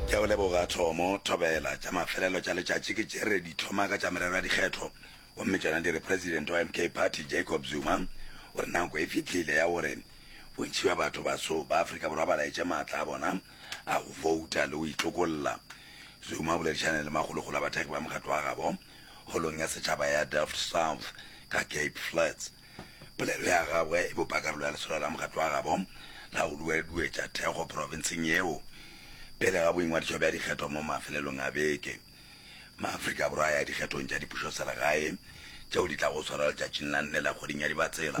Tša go leboga, Thomo, thobela, tša mafelelo tša letšatši ke tše re di hloma ka tša merero ya dikgetho, gomme tšona di re President wa MK Party Jacob Zuma o re nako e fihlile ya gore bontši bja batho baso ba Afrika Borwa ba laetše maatla a bona a go fouta le go itlokolla. Zuma o boledišane le makgolokgolo a bathekgi ba mokgatlo wa gabo Holong ya Setšhaba ya Delft South ka Cape Flats. Polelo ya gagwe e bopa karolo ya lesolo la mokgatlo wa gabo la go dueduetša thekgo profenseng yeo pele ga boingwadišo bja dikgetho mo mafelelong a beke. Maafrika Borwa a ya dikgethong tša dipušoselegae tšeo di tlago go swarwa letšatšing la nne la kgweding ya Dibatsela.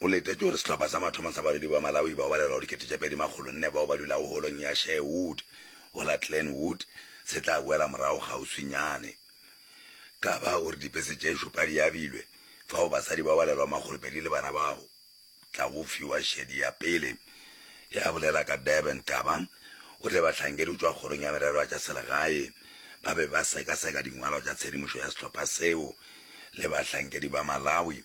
Go letetšwe gore sehlopha sa mathomo sa badudi ba Malawi bao ba lelago dikete tše pedi makgolo nne bao ba dulago holong ya Sherwood go la Glenwood se tla boela morago kgauswinyane. Kaba o re dipese tše šupa di abilwe fao basadi bao ba lelago makgolo pedi le bana ba tla go fiwa šedi ya pele ya bolela ka Durban Kaba o tle bahlankedi go tšwa kgorong ya merero ya tša selegae ba be ba sekaseka dingwalo tša tshedimošo ya sehlopha seo le bahlankedi ba Malawi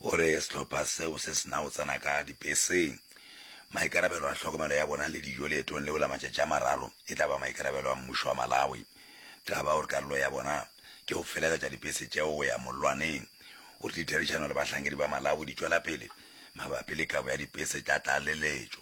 O re sehlopha seo se se na go tsena ka dibeseng. Maikarabelo a tlhokomelo ya bona le dijo leetong leo la matšatši a mararo e tla ba maikarabelo a mmušo wa Malawi. Taba o re karolo ya bona ke go felegetša dibese tšeo go ya mollwaneng. O re ditherišano le bahlankedi ba Malawi di tšwela pele mabapi le kabo ya dibese tša tlaleletšo.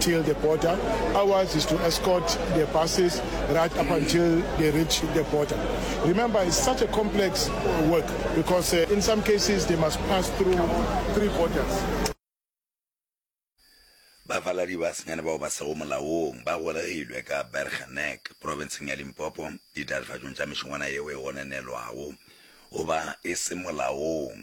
till the border, ours is to escort the buses right up until they reach the border. Remember, it's such a complex work because uh, in some cases they must pass through three borders. bafaladi ba senyane bao ba sego molaong ba golegilwe ka bergenek profenseng ya limpopo ditatofatšong tša mešongwana yeo e gonenelwago goba e se molaong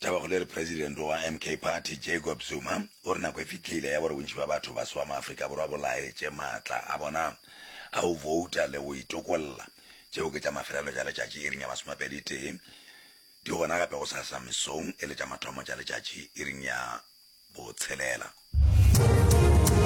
Taba go le re president wa MK Party Jacob Zuma o re nako e fitlhile ya gore bontši ba batho ba swa maAfrika Borwa bo laetše maatla a bona a go vouta le go itokolla. Tšeo ke tša mafelelo tša letšatši iring ya masomepedi tee, di gona gape gosasa mesong e le tša mathomo tša letšatši iring ya botshelela.